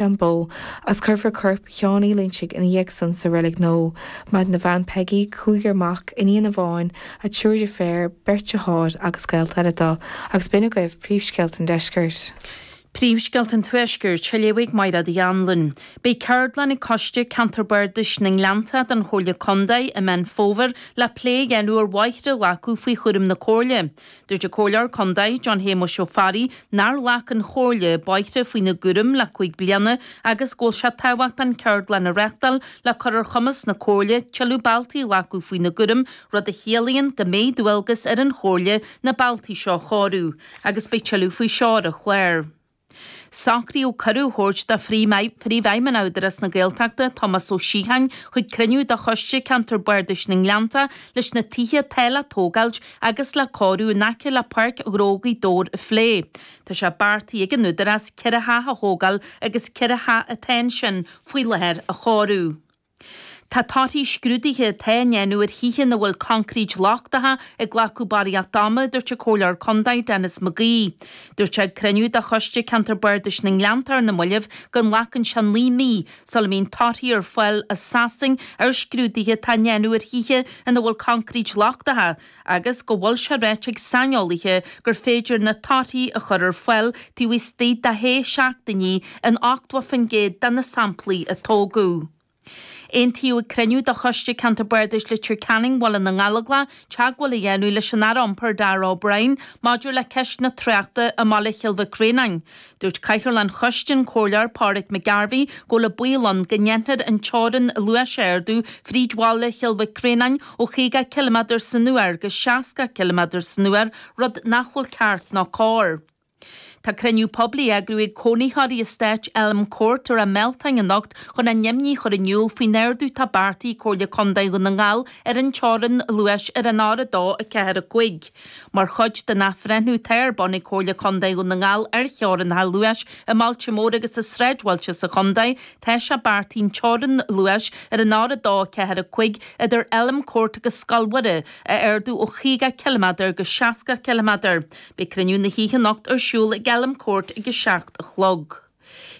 Bó, agus cuirfear corp Sheáin Uí Loinsigh ina dhiaidh san sa reilig nua. Maireann a bhean Peigí, cúigear mac, iníon amháin, triúr deirféar, beirt deartháir agus gaolta eile do. Agus b'in agaibh príomhscéalta an deiscirt. Príomhscéalta an tuaiscirt, á léamh ag Aodh Máirtín Ó hAnnluain. Beidh ceardlann ag Coiste Ceantair Bardais na nGleannta den Chomhairle Contae i Meán Fómhair le plé a dhéanamh ar bhóithre a ghlacadh faoi chúram na Comhairle. Dúirt an Comhairleoir Condae, John Shéamuis Ó Fearraigh, nár ghlac an Chomhairle bóithre faoina gcúram le cúig bliana agus go bhfuil sé tábhachtach ceardlann a reachtáil le cur ar chumas na Comhairle tuilleadh bealtaí a ghlacadh faoina gcúram, rud a chiallaíonn go mbeidh dualgas ar an Chomhairle na bealtaí seo a chóiriú agus beidh tuilleadh faoi seo ar an chlár. Socraíodh cuireadh a thabhairt do Phríomhfheidhmeannach Údarás na Gaeltachta, Tomás Ó Síocháin, chuig cruinniú de Choiste Ceantair Bardais na nGleannta leis na tithe atá le tógáilt agus le cóiriú in aice le Páirc Ghnó Ghaoth Dobhair a phlé. Tá sé beartaithe ag an Údarás ceithre theach a thógáil agus ceithre theach atá ansin faoi láthair a chóiriú. Tá torthaí scrúduithe atá á ndéanamh ar thithe ina bhfuil coincréit lochtach ag glacadh barraíocht ama, a dúirt an Comhairleoir Contae, Denis McGee. Dúirt sé ag cruinniú de Choiste Ceantair Bardais na nGleanntach ar na mallaibh go nglacann sé naoi mí sula mbíonn torthaí ar fáil as Sasain ar scrúduithe atá á ndéanamh ar thithe ina bhfuil concrete lochtacha agus go bhfuil sé ráite ag saineolaithe gur féidir na torthaí a chur ar fáil taobh istigh de shé seachtainí in 80% de na samplaí a tógadh. Aontaíodh ag cruinniú de Choiste Ceantair Bardais Leitir Ceanainn Bhaile na nGallóglach teagmháil a dhéanamh leis an Aire Iompair Darragh O'Brien maidir le ceist na tráchta i mBaile Chill Mhic Réanáin, Dúirt Cathaoirleach an Choiste an Comhairleoir Pauric McGarvey go bhfuil baol ann go ndéanfar an teorainn luais a ardú fríd bhaile Chill Mhic Réanáin ó chaoga cilimeadar san uair go seasca cilimeadar san uair, rud nach bhfuil ceart ná cóir. Tá cruinniú poiblí á eagrú ag cónaitheoirí Estáit Elm Court i Rath Mealtáin anocht chun a n-imní chur in iúl faoin ardú atá beartaithe ag Comhairle Condae Dhún na nGall ar an teorainn luais ar an R2, 4, 5. Mar chuid den athbhreithniú atá ar bun ag Comhairle Contae Dhún na nGall ar theorainneacha luais i mbailte móra agus i sráidbhailte sa chontae. Tá sé beartaithe an teorainn luais ar an R2, 4, 5 idir Elm Court agus Scoil Mhuire a ardú ó chaoga ciliméadar go seasca ciliméadar. Beidh cruinniú na hoíche anocht ar siúl ag Elm Court ag a seacht a chlog.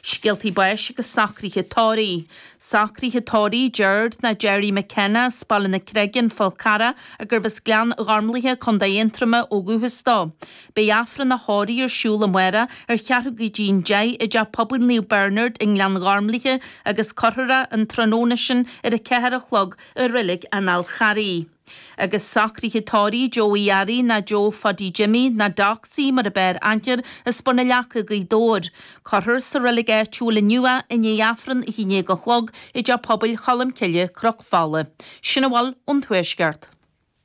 Scéaltaí báis agus socruithe tórraimh. Socruithe tórraimh déanta do Gerry McKenna as Baile na Creige, an Fál Carrach, agus arbh as Gleann Ghormlaithe, Co. Aontroma, ó dhúchas dó. Beidh Aifreann a thórraimh ar siúl amárach ar cheathrú go dtí an deich i dTeach Pobail Naomh Bernard i nGleann Ghormlaithe agus cuirfear é an tráthnóna sin ar a ceathair a chlog i Reilig an Fháil Charraigh. Agus socraithe tórraimh, Joe Uí Fhearraigh, ná Joe Phaidí Jimmy, ná Doc C mar ab fhearr aithne air as Bun an Leaca Gaoth Dobhair. Cuirfear sa reilig áitiúil inniu é i ndiaidh Aifreann a haon déag a chlog i dTeach Pobail Cholmcille, Cnoc Fola. Sin a bhfuil ón Tuaisceart.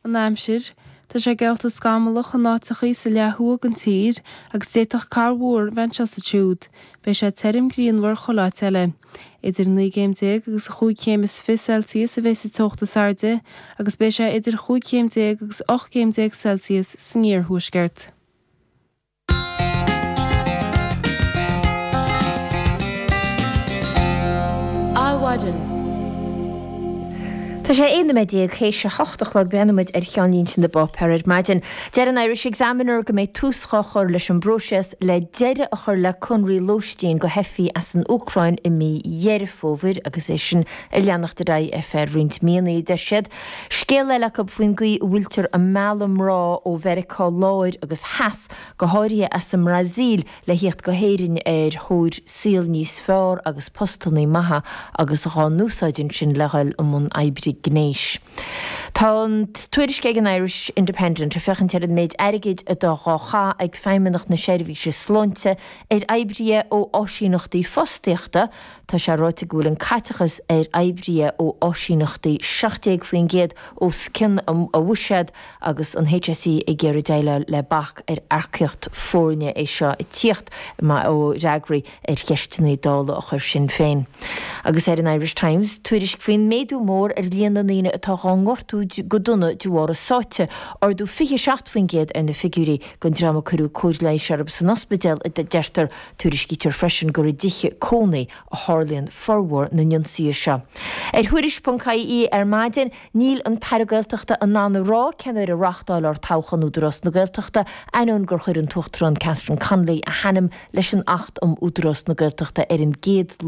An aimsir, Tá sé geallta scamallach in áiteachaí sa leath thuaidh den tír agus d'fhéadfadh corrmhúr a bheith anseo is ansiúd. Beidh sé tirim grianmhar chuile áit eile. Idir naoi gcéim déag agus a chúig chéim is fiche Celsius a bheidh sa teocht is airde agus beidh sé idir chúig chéim déag agus ocht gcéim déag Celsius san iarthuaisceart. Adhmhaidin Tá sé 11 noiméad théis a hocht a chlog. Breathnaímid ar cheannlínte na bpáipéar ar maidin. Deir an Irish Examiner go mbeidh tús dhá chur leis an bpróiseas le deireadh a chur le conradh lóistín do theifigh as an Úcráin i mí Dheireadh Fómhair agus é sin ag leanacht ar aghaidh ar feadh roinnt míonna, a deir siad. Scéal eile acu faoin gcaoi a bhfuiltear ag mealladh mná ó Mheiriceá Láir agus Theas, go háirithe as an mBrasíl, le theacht go hÉirinn ar thóir saol níos fearr agus postannaí maithe agus dhá n-úsáid ansin le dhul i mbun oibre gnéis. Tá tuairisc ag an Irish Independent ag féachaint ar an méid airgid atá dhá chaitheamh ag Feidhmeannacht na Seirbhíse Sláinte ar oibríthe ó áisíneachtaí fostaíochta, tá sé ráite go bhfuil an caiteachas ar oibríthe ó áisíneachtaí 17% os cionn a bhuiséad agus an HSE ag iarraidh déileáil le bac ar earcaíocht foirne. É seo ag tíocht ó fhreagraí ar cheisteanna Dála a chuir Sinn Féin. Agus ar an Irish Times tuairisc faoin méadú mór ar líon na ndaoine atá dhá ngortú go dona de bharr a sáite, ardú 27% ar na figiúirí den dream a cuireadh cóir leighis orthu san ospidéal, a deirtear. Tuairiscítear freisin gur i dtithe cónaí a tharlaíonn formhór na n-ionsaithe seo. Ar Thuairisc.ie ar maidin, níl an tAire Gaeltachta in ann a rá cén uair a reáchtálfar toghchán Údarás na Gaeltachta, ainneoin gur chuir an tUachtarán Catherine Connolly a hainm leis an Acht um Údarás na Gaeltachta ar an gcéad